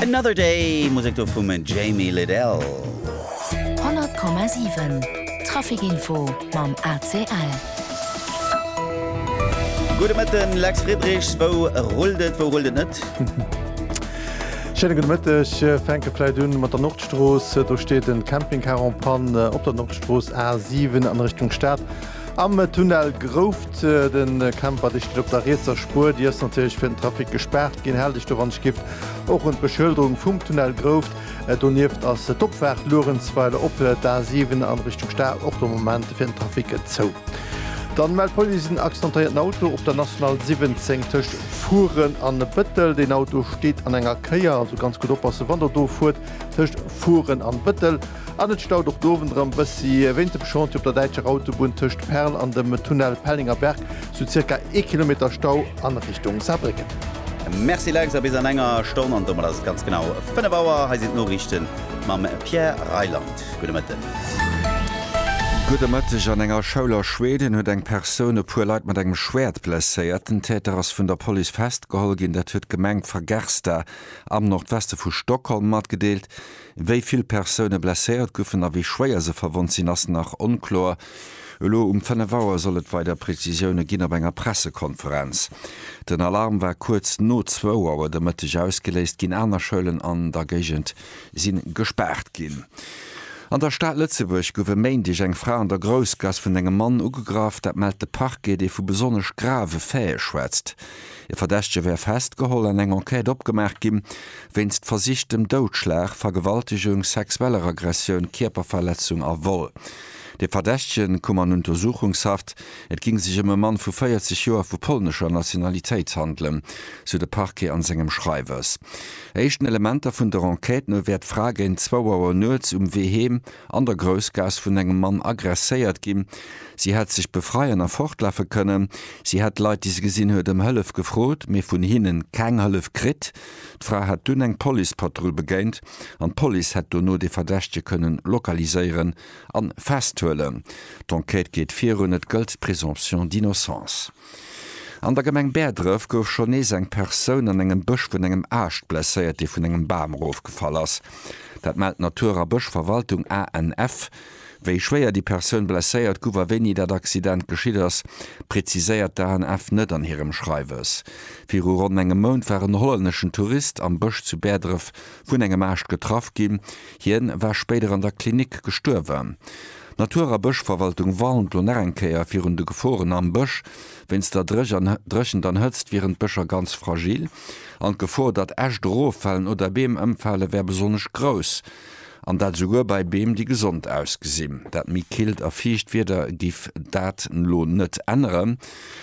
Another Day, Musek do vum Jamie Lidell. 100,7 Traficinfo mam ACL. Gudde Mëtten, Lex Friedrichs, wou rullt et, wou rullt et net? Schéine gudde Mëtteg. Fänke vläit un mat der Nordstrooss. Do steet en Campingcar en panne op der Nordstrooss A7 an Richtung Stad. Am Tunnel Grouft, den Camper dicht op der rietser Spuer, déi ass natierlech fir den Trafic gespaart ginn. Haal dech do wann ech giff och un d'Beschëlderung vum Tunnel Grouft. Donieft ass d'Opfaart Luerenzweiler op d'A 7 an Richtung Stad och de Moment fir den Trafic zou. Dann mellt d'Police en accidentéierten Auto op der National 17 tëscht Furen an Bëttel. Deen Auto steet an enger Kéier, also ganz gutt oppassen wann der do fuert tëscht Furen an Bëttel. An et staut och dowendrem bessi. Wéint dem Chantier op der däitscher Autobunn tëscht Perl an dem Tunnel Pellinger Berg sou zirka ee Kilometer Stau a Richtung Saarbrécken. Merci Lex, a bis an enger Stonn, an domat ass et ganz genau 5 Auer. Hei sinn d'Noriichten mam Pierre Reyland. Gudde Mëtten. Gudde Mëtteg. An enger Schoul a Schweden huet eng Persoun e puer Leit mat engem Schwäert blesséiert. Den Täter ass vun der Police festgeholl ginn. Dat huet d'Gemeng Fagersta am Nordweste vu Stockholm matgedeelt. Wéi vill Persoune blesséiert goufen a wéi schwéier se verwonnt sinn, ass nach onkloer. Elo um 5 Auer soll et weider Prezisioune ginn op enger Pressekonferenz. Den Alarm war kuerz no zwou Auer de Mëtteg ausgeléist ginn. Aner Schoulen an der Géigend si gespaart ginn. An der Stad Lëtzebuerg gouf e Méindeg eng Fra an der Groussgass vun engem Mann ugegraff. Dat mellt de Parquet, dee vu besonnesch grave Faite schwätzt. E Verdächtege wär festgeholl an eng Enquête opgemaach gi wéinst versichtem Doudschlag, Vergewaltegung, sexueller Aggressioun, Kierperverletzung a Vol. De Verdächtege koum an Untersuchungshaft. Et géing sech ëm e Mann vu 40 Joer vu polnescher Nationalitéit handelen, sou de Parquet an sengem Schreiwes. Éischten Elementer vun der Enquête no wär d'Fra géint zwou Auer nuets um Wee heem, an der Groussgaass vun engem Mann agresséiert ginn. Si hätt sech befreien a fortlafe kënnen. Si hätt Leit, déi se gesinn huet, ëm Hëllef gefrot, mee vun hinne keng Hëllef kritt. D'Fra hätt dunn eng Policepatrull begéint an d'Police hätt dono de Verdächtege kënnen lokaliséieren a festhuelen. D'Enquête geet virun, et gëllt d'Présomption d'innocence. An der Gemeng Bäerdref gouf schonn nees eng Persoun an engem Bësch vun engem Aascht blesséiert, dee vun engem Bam erofgefall ass. Dat mellt d'Natur a Bëschverwaltung, ANF. Wéi schwéier déi Persoun blesséiert guff a wéini dat Accident geschitt ass, preziséiert d'ANF net an hirem Schreiwes. Viru ronn engem Mount war en hollänneschen Tourist am Bësch zu Bäerdref vun engem Aascht getraff ginn. Hien war spéider an der Klinik gestuerwen. D'Natur a Bëschverwaltung warnt elo nach eng Kéier virun de Geforen am Bësch. Wéinst der Dréchent an Hëtzt wieren d'Bëscher ganz fragil an d'Gefor, datt Äscht eroffalen oder Beem ëmfale wär besonnesch grouss. An dat esouguer bei Beem, déi gesond ausgesinn. Dat méi killt a fiicht Wieder giff dat elo net änneren.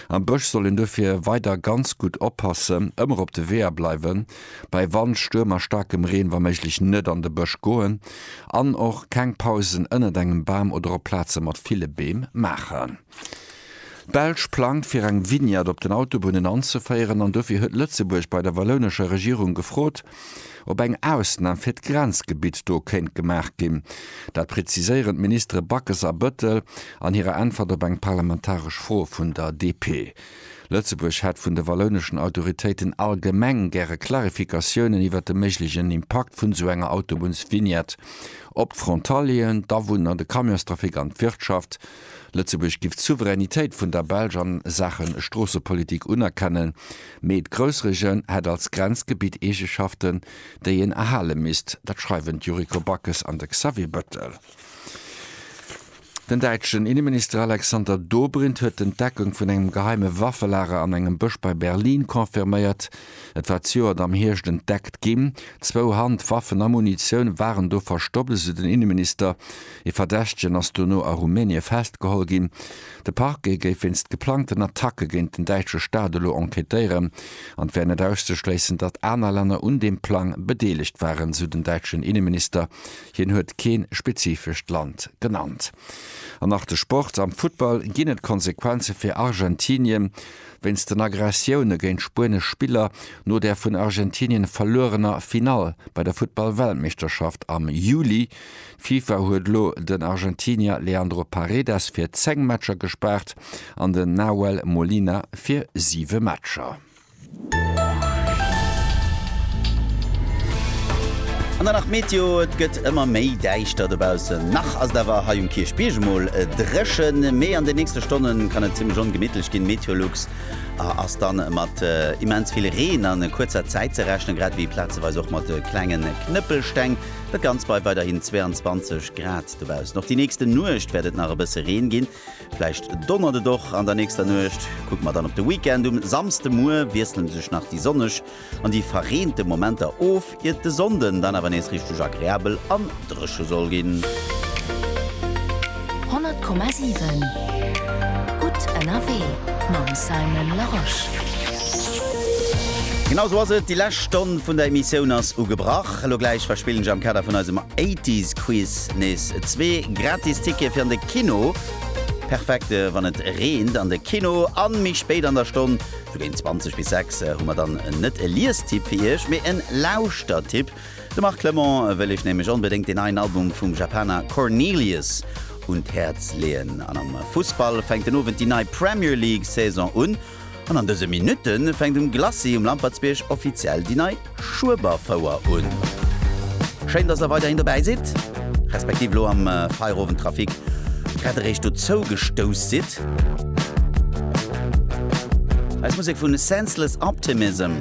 Am Bësch soll een dofir weider ganz gutt oppassen, ëmmer op de Weeër bleiwen bei Wand, Stuerm a staarkem Reen wa méiglech net an de Bësch goen an och keng Pausen ënnert engem Bam oder op Plaze mat ville Beem maachen. D'Belsch plangt fir eng Vignette op den Autobunnen anzeféieren an dofir huet Lëtzebuerg bei der wallounescher Regierung gefrot, ob eng Ausnam fir d'Grenzgebitt do kéint gemaach ginn. Dat preziséieren d'Ministere Backes a Bëttel an hirer Äntwert op eng parlamentaresch Fro vun der DP. Lëtzebuerg hätt vun de wallouneschen Autoritéiten allgemeng gäre Klarifikatiounen iwwert de méiglechen Impakt vun esou enger Autobunnsvignette op d'Frontalieren, d'Awunner, de Camionstrafic an d'Wirtschaft. Lëtzebuerg giff d'Souveränitéit vun der Belsch a Saache Stroossepolitik unerkennen, mee d'Groussregioun hätt als Grenzgebitt Eegeschaften, déi een erhale misst. Dat schreiwen d'Yuriko Backes an de Xavier Bettel. Den däitschen Inneminister Alexander Dobrindt huet d'Entdeckung vun engem geheime Waffelager an engem Bësch bei Berlin confirméiert. Et war d'Joert am Hierscht entdeckt ginn. Zwou Handwaffen a Munitioun waren do verstoppt, esou den Inneminister. Ee Verdächtegen ass dono a Rumänie festgeholl ginn. De Parquet géif wéinst geplangten Attacke géint den däitsche Staat elo enquêtéieren an et wär net auszeschléissen, datt aner Länner un deem Plang bedeelegt waren, esou den däitschen Inneminister Hien huet kee spezifescht Land genannt. An nach de Sport, Am Futtball ginn et Konsequenze fir Argentinien. Wéinst den Aggressioune géint spuenesch Spiller no der vun Argentinien verluerener Finall bei der Futtball-Weltmeeschterschaft am Juli. D'FIFA huet elo den Argentinier Leandro Paredes fir 10 Matcher gespaart an den Nahuel Molina fir 7 Matcher. An dann nach d'Meteo, Et gëtt ëmmer méi däischter dobaussen. Nach ass et awer hei um Kierchbierg emol dréchen, mee an den nächste Stonne kann et zimmlech ongemittlech ginn. Meteolux ass da mat immens vill Reen a kuerzer Zäit ze rechnen, grad ewéi plazeweis och mat klenge Knëppelsteng. Dat Ganzt bei weiderhin 22 Grad dobaussen. Och déi nächste Nuecht wäert et nach e bësse Reen ginn. Vläicht donnert et och an der nächster Nuecht. Kucke mer dann op de Weekend. Um Samsdemuer wiessele sech nach déi sonneg an déi verreente Momenter of, iert de Sonnden dann awer nees richteg agreabel an dréche soll ginn. 100,7 Gutt ënnerwee mam Simon Larosche. Genau esou ass et, déi lescht Stonn vun der Emissioun ass ugebrach. Elo gläich verspillen ech am Kader vun eisem Eighties Quiz. Flirt nees zwee gratis Tickete fir an de Kino. Perfekt wann et reent an de Kino an méi spéit an der Stonn, sou géint 20 bis 6, hu mer dann net e Liestipp fir Iech, mee en Lauschtertipp. De Marc Clement wëll Iech nämlech onbedéngt den neien Album vum Japaner Cornelius un d'Häerz leeën. An am Fussball fänkt den Owend déi nei Premier League Saison un. An an dëse Minutte fänkt um Glacis um Lampertsbierg offiziell déi nei Schueberfouer un. Schéin, dass der weiderhin dobäi sidd, respektiv elo am Feierowendtrafic grad eréischt dozou gestouss sidd. Eis Musek vu Senseless Optimism.